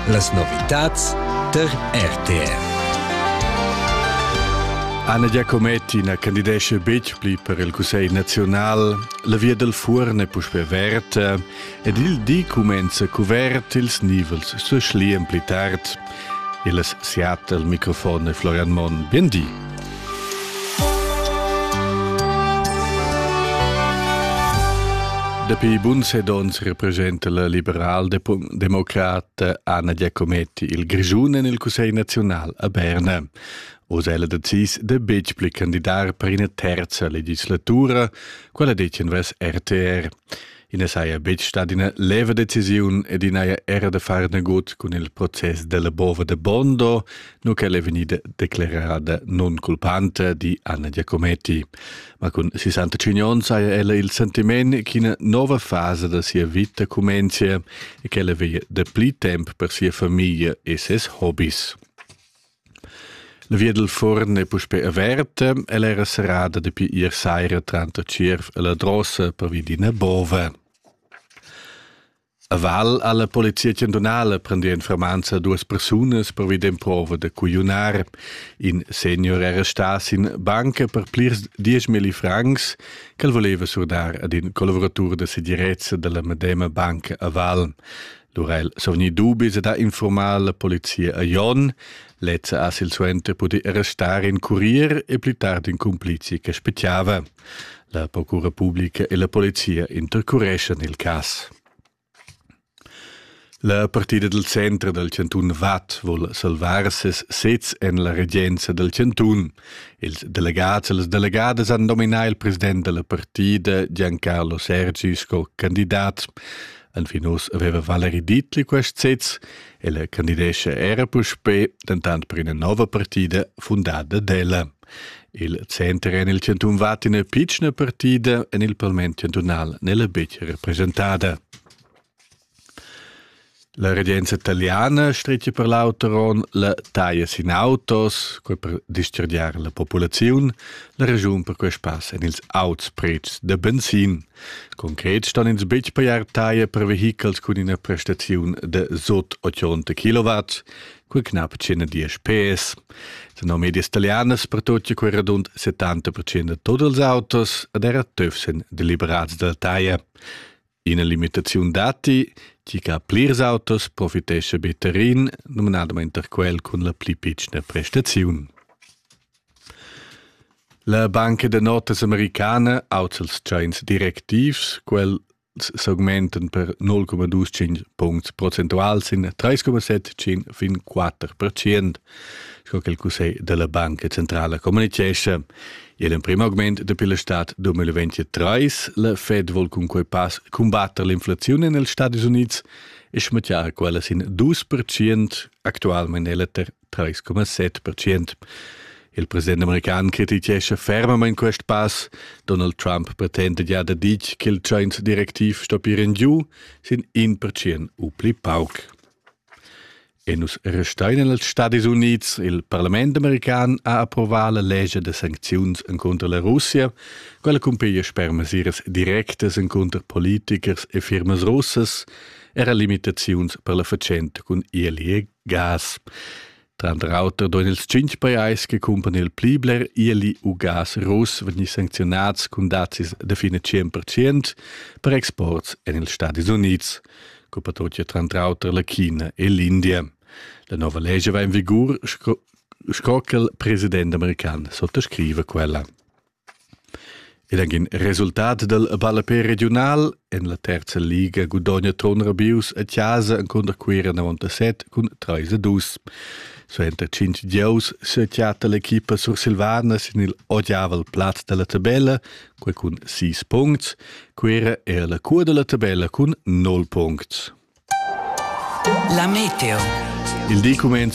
Las novitads tar RTR. Anna Giacometti na candidesce betg pli per il Cussegl naziunal. La via dal Fuorn è puspè averta ed il di cumenza cuvert ils nivels sa schlian pli tard. Illes siat el microfon e Florian Mon. Biendi! Dapi bun set ons representa la liberal-democrata Anna Giacometti il Grischun en il Cussegl naziunal a Berna. Oz è ella decis de betg pli candidar per ina terza legislatura, quella detg invers RTR. I ne saja betg stat ina leva decisiun ed i n'haja era da far nagut cun il process della Bova de Bondo, nu ch'ella è vegnida declerada non culpante di Anna Giacometti. Ma cun 65 onn saja ella il sentiment ch'ina nova fase da sia vita comencia e ch'ella veglia da pli temp per sia famiglia e ses hobbies. La via dal fuorn è puspè averta, ella era serrada dapi ier saira tranter Tschierv e la Drossa pervi d'ina bova. A Val ha la polizia chantunala prendì en fermanza duas persunas pervi d'emprova da cugliunar. In senior era stà sin banca per plirs dieschmilli francs ch'el voleva surdar ad in collaboratur da segirezza da la medema banca a Val. Durel sovni dubis ed ha infurmà la polizia a Jon. Lezza ha silsuenter pudì restar in curier e pli tard in cumplice che spettava. La procura publica e la polizia intercureschan il cas. La partida del centro del Cantun Vad vuol salvar ses sez en la regenza del Cantun. Ils delegats e les delegadas han nominà il president della partida Giancarlo Sergi sco candidat. Enfin uss aveva Valeri Dietli quest sez, ella candidescha era puspè dentant per ina nova partida fundada d'ella. Il center en il chantun va ina pitschna partida en il parlament chantunal nella betg representada. La regenza italiana stretga per l'auteron la taglia sin autos, quei per dischargiar la populaziun, la ragiun per quei spass en ils auts prezs da benzin. Concret stan ins betg pajar taia per vehichels cun ina prestaziun de sot 80 kW, cu knapp 110 PS. Tenor medias italianas pertocchia quei radund 70% de tot ils autos ed era töf sen deliberats dalla taia. Ina limitaziun datti, tgi che ha plirs autos profitesce better in, nominadamain quel cun la pli pitschna prestaziun. La banca da notas americana auza ils tschains directivs. Quels s'augmentan per 0,25 puncts procentuals in 3,75 fin 4 percent, sco che il cussegl da la Banca centrala communitgescha. Igl emprim augment dapi la stad 2023. La Fed vol cun quei pass cumbatter l'inflaziun en ils Stadis Unids e schmattiar quella sin 2 percent. Actualmein è la 3,7 percent. Il president american crititgescha fermamain quest pass. Donald Trump pretenda gia da ditg che il Jones-direktiv stoppieren giu sin in percent u pli pauc. E nus restein en els Stadis Unids. Il parlament american ha approvà la legge de sancziuns contro la Russia, quella cumpiglia per mesiras directas contro politichers e firmas russas era limitaziuns per la fatschent cun ILE Gas. Tranter auter doen ils tschintg pajais che cumpran il pli bler ieli u gas russ vegnir sancziunads cun dazis da fin a 100% per exports en ils Stadis Unids, cupatrotia tranter auter la China e l'India. La nova legge va in vigur sco, sco che il president american sottoscrive quella. Ed anc in resultat dal ballapè regiunal en la terza liga gudogna Ton Rabius a chasa encunter Cuira 97 cun 3 a 2. Suenter tschintg gieus sechatta l'equipa sursilvana sin il odiavel plaz dalla tabella, quei cun 6 puncts. Cuira era la cua dalla tabella cun 9 puncts. La meteo. Il di cumenza